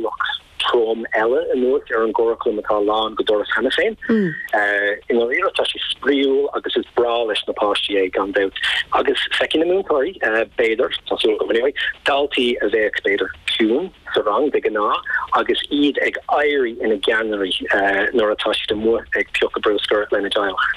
Ualach trom eile anuas ar an gcuraclam atá lán go doras cheana féin. I ndáiríre tá sé spraíúil agus is breá leis na páistí é, gan dabht, agus feiceann na múinteoirí, b'fhéidir, tá súil agam anyway, daltaí a bheadh, b'fhéidir, ciúin sa rang de ghnáth agus iad ag éirí ina gceannairí nuair atá siad amuigh ag piocadh bruscair lena dteaghlach.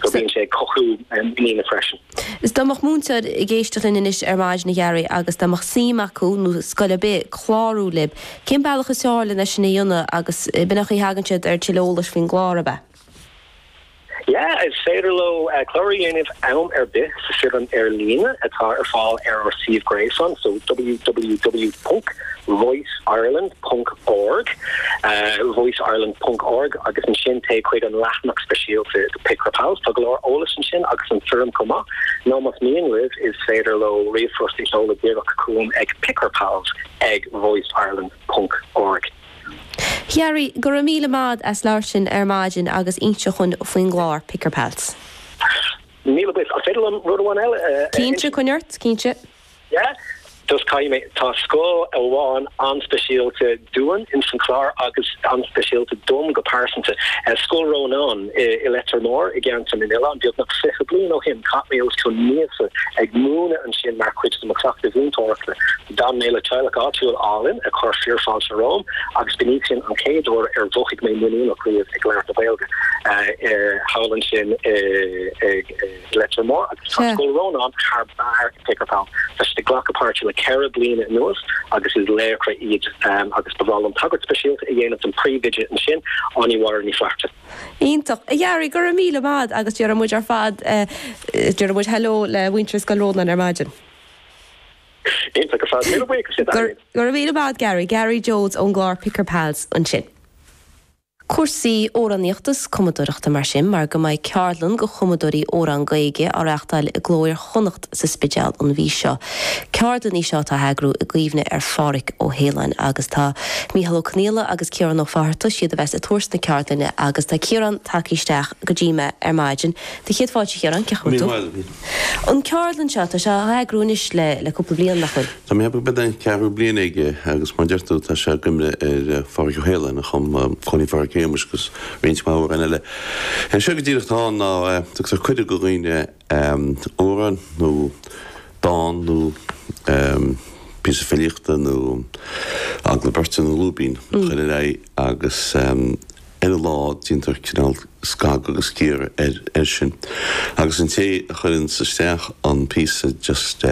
So bíonn sé ag cothú muiníne freisin. Is dá mbeadh múinteoir ag éisteacht linn anois ar maidin, a Gary, agus dá mbeadh suim acu, nó scoil ar bith, clárú libh, cén bealach is fearr len é sin a dhéanamh agus b'in é an chaoi a thagann siad ar tuilleadh eolais faoin gclár, ab ea? Yeah, is féidir leo clárú a dhéanamh am ar bith sa fhoirm ar líne atá ar fáil ar ár suíomh gréasáin, so www. voiceireland.org, voiceireland.org, agus ansin téigh chuig an leathanach speisialta do Picker Pals, tá go leor eolais ansin agus an fhoirm chomh maith, nó más mian libh is féidir leo ríomhphost a sheoladh díreach chugam ag pickerpals ag voiceireland.org. A Gary, go raibh míle maith as labhairt linn ar maidin agus inseacht dhúinn faoin gclár Picker Pals. Míle buíochas. An féidir liom rud amháin eile a insint? Cinnte, coinnigh ort, cinnte. Just caithfidh mé. Tá scoil amháin an-speisialta dúinn in san chlár agus an-speisialta dom go pearsanta. Scoil Rónáin i Leitir Móir i gceantar na nOileán. Beagnach fiche bliain ó shin chaith mé os cionn míosa ag múineadh ansin mar chuid de mo chleachtadh mhúinteoireachta. D'fhan mé le teaghlach áitiúil álainn a chuir fíorfáilte romham agus b'in í sin an chéad uair ar mhothaigh mé muiníneach riamh ag labhairt na Gaeilge. Thall ansin i. Leitir Móir agus tá Scoil Rónáin thar barr ag Picker Pals. Tá siad ag glacadh páirte le ceithre bliana anuas agus is laochra iad agus ba bhreá liom tagairt speisialta a dhéanamh don phríomhoide ansin, Áine Mháire Ní Fhlatharta. Iontach. A Gary, go raibh míle maith agus déarfaidh muid ar fad, déarfaidh muid hello le muintir Scoil Rónáin ar maidin. Iontach ar fad. Míle buíochas a Gary. Go raibh míle maith agat Gary. Gary Jones ón gclár Picker Pals ansin. cúrsaí amhránaíochta is cumadóireachta mar sin, mar go mbeidh ceardlann do chumadóirí amhrán Gaeilge á reáchtáil i gCló Iar-Chonnacht sa Spidéal an mhí seo. Ceardlann í seo atá á heagrú i gcuimhne ar Phádraig Ó hAoláin agus tá Mícheál Ó Conghaile agus Ciarán Ó Fátharta is iad a bheas ag tabhairt na ceardlainne agus tá Ciarán tagtha isteach go dtí me ar maidin. Do chéad fáilte a Chiaráin, cén chaoi a bhfuil tú? An ceardlann seo, tá sé á eagrú anois le cúpla bliain, nach bhfuil? Tá mé ag ceapadh gurb é an ceathrú bliain aige agus mar a deir tú, tá sé i gcuimhne ar Phádraig Ó hAoláin a chum Cóilín Phádraig Shéamais agus roinnt mhaith amhrán eile. Is é go díreach atá ann ná tugtar cuireadh do dhaoine amhrán nó dán nó píosa filíochta nó agallamh beirte nó lúibín a chur ar aghaidh agus Ar an lá, déantar cineál scagadh agus cíoradh air sin agus an té a chuireanns isteach an píosa just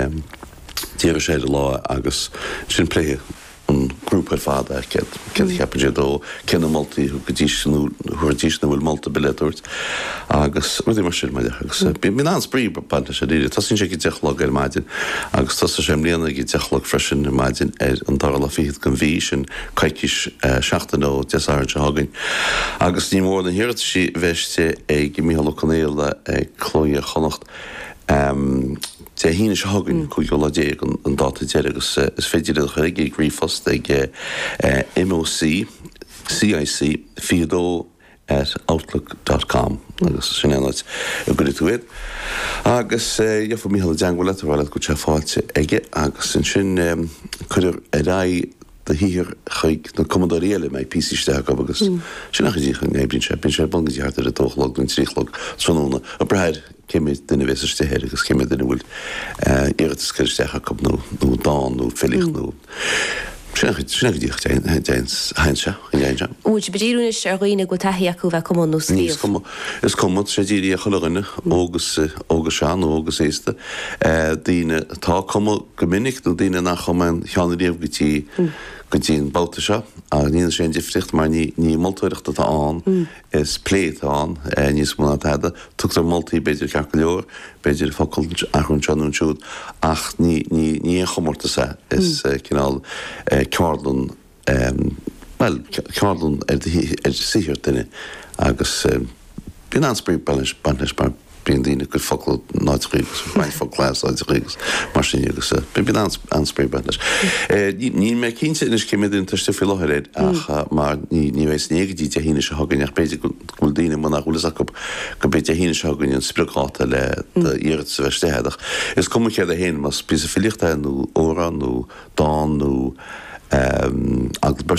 d'éireodh sé ar an lá é agus ansin pléifidh an grúpa ar fad é, céard a cheapann siad dó, cé na moltaí a thugaidís nó thabharfaidís nó an bhfuil moltaí ar bith eile le tabhairt agus rudaí mar sin, bhuel agus bíonn an-spraoi ag baint leis uilig. Tosaíonn sé ag a deich a chlog ar maidin agus tosaigh sé i mbliana ag a deich a chlog freisin ar maidin ar an dara lá fichead den mhí, sin coicís, seachtain ó Dé Sathairn seo chugainn agus ní mór na hiarrataisí a bheith istigh ag Micheál Ó Conghaile ag Cló Iar-Chonnacht Dé hAoine seo chugainn, 15 lá an dáta deiridh agus is féidir iad a chur chuige ag ríomhphost ag MÓC, CIC 22. at outlook dot com agus sin é an áit a gcuirfidh tú air agus gheobhaidh Micheál i dteangmháil leat ag rá leat go bhfuil sé faighte aige agus ansin cuirfear ar aghaidh do shaothar chuig na cumadóirí eile a mbeidh píosaí isteach acu agus sin an chaoi a n- oibríonn sé, bíonn sé ar bun go dtí thart ar a dó a chlog nó a trí a chlog tráthnóna ag brath ar cé méid duine a bhéas istigh air agus cé méid duine a bhfuil iarratas curtha isteach acu nó dán nó filíocht nó. Muid ag díriú anois ar dhaoine a bhfuil taithí acu a bheith ag cumadh nó scríobh. Is cuma, tá sé dírithe ar chuile dhuine, óg, sean, nó óg is aosta, daoine atá ag cumadh go minic nó daoine nach chum aon cheo ariamh go dtí an babhta seo. Ach ní dhéanann sé aon difríocht mar ní moltóireacht atá ann. is plé atá ann, níos mó ná tada. Tugtar moltaí, b'fhéidir, ceart go leor, b'fhéidir focal a athrú anseo nó ansiúd, ach ní haon chomórtas é, is cineál ceardlann, bhuel, ceardlann ar shaothar duine agus bíonn an-spraoi ag baint leis mar. bíonn daoine ag cur focla in áiteacha agus ag baint focla as áiteacha agus mar sin agus bíonn an-spraoi ag baint leis. Níl mé cinnte anois cé méid duine atá istigh faoi láthair air ach mar ní bheidh fhios againn é go dtí Dé hAoine seo chugainn ach b'fhéidir go bhfuil daoine nach bhfuil fhios acu go mbeidh Dé hAoine seo chugainn an spriocdháta le d'iarratas a bheith istigh agat. Is cuma céard é fhéin, más píosa filíochta é nó amhrán nó dán nó.